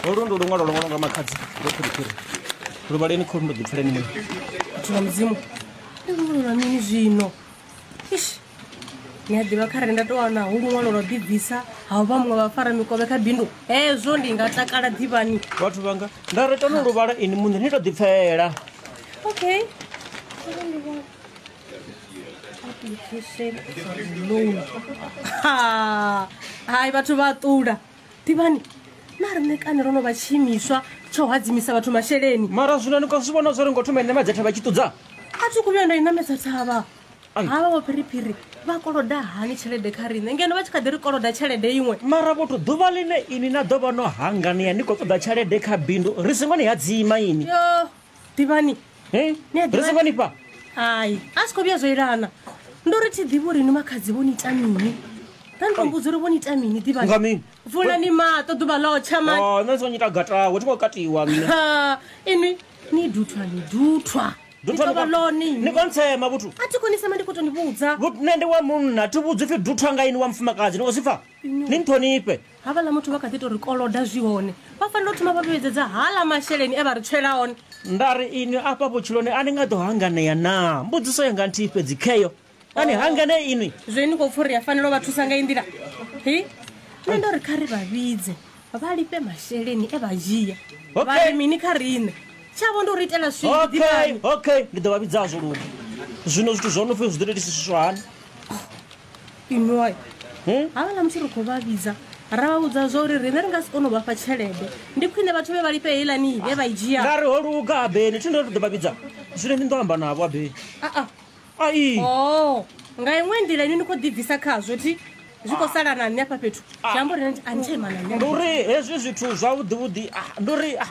holu ndi luṅwalo lwo ṅwalwa nga makhadzi lwo phiriphiri lu vhaleni kholu ndo ḓipfuleni mwe vhathu vha mudzimu ndi luṅwalo lwa mini zwino ish ni a ḓivha kharali nda tou wana hu luṅwalo lwa ḓibvisa ha u vha muṅwe vha fara mikovhe kha bindu hezwo ndi nga takala ḓivhani vhathu vhanga nda ri tano lu vhala ini muṋe ni to ḓipfela okay Ha, hai vhathu vha ṱula ḓivhani na riṋe kani ro no vha tshiimiswa tsha u hadzimisa vhathu masheleni mara zwino ni khou zwi vhona zwo ri ngo thoma ine madzhetha vha tshi ṱudza a thi khou vhuya nda i namedza thavha Ai. havha vho phiriphiri vha koloda hani tshelede kha riṋe ngeno vha tshi kha ḓi ri koloda tshelede iṅwe mara vhothu ḓuvha ḽine ini na ḓo vha no hanganea ni khou ṱoḓa tshelede kha bindu ri songo ni hadzima ini yo ḓivhani Hey, Ni a ḓivha- ri songo ni fha hai a si khou vhuya zwo ilana ndo ri thi ḓivhi uri ni makhadzi vho ni ita mini ra ni to mbudza uri vho ni ita mini ḓivhani Nga mini? vulani maṱo ḓuvha ḽo tsha mani Oh, nṋe ndi songo nyita gatawe thi khou katiwa nṋe Ha, inwi ni duthwa ni duthwa Ni Duthwa tovha ni khou- lone ni inwi. khou ntsema vhuthu a thi konisema ndi khou to ni vhudza Vhut- nṋe ndi wa munna thi vhudzi pfi duthwa nga ini wa mufumakadzi ni khou zwi pfa ni nṱhonifhe havhaḽa muthu vha kha ḓi to ri koloda zwi hone vha fanela u thoma vha vhuyedzedza hala masheleni e vha ri tswela one nda ri inwi afha vhutshiloni a ni nga ḓo hanganea naa mbudziso yanga nthihi fhedzi kheyo a ni hanganee inwi zwe ni khou pfha uri a fanela u vha thusa nga i nḓila hi nṋe ndo ri kha ri vha vhidze vha lifhe masheleni e vha dzhia Okay. vha ri mini kha riṋe tshavho ndi u ri itela okay swidivhani okay ndi ḓo vha vhidzazwo lune zwino zwithu zwo no pfhi zwi ḓo tou itisiswa hani inwai havhala muthu ri khou vha vhidza ra vha vhudza zwa uri riṋe ri nga si kone u vhafha tshelede ndi khwine vhathu vhe vha lifhe heilani vhe vha i dzhia nga ri ho luga abeni thi ndo ri ḓo vha vhidza zwino ni ḓo amba navho abeni aa ai o Oh, nga iṅwe nḓila ini ni khou ḓibvisa khazwo thi zwi khou sala na nṋe afha fhethu zwi amba uri a ni tsha ima na ndi nṋe uri hezwi zwithu zwavhuḓivhuḓi ah, ndi uri ah,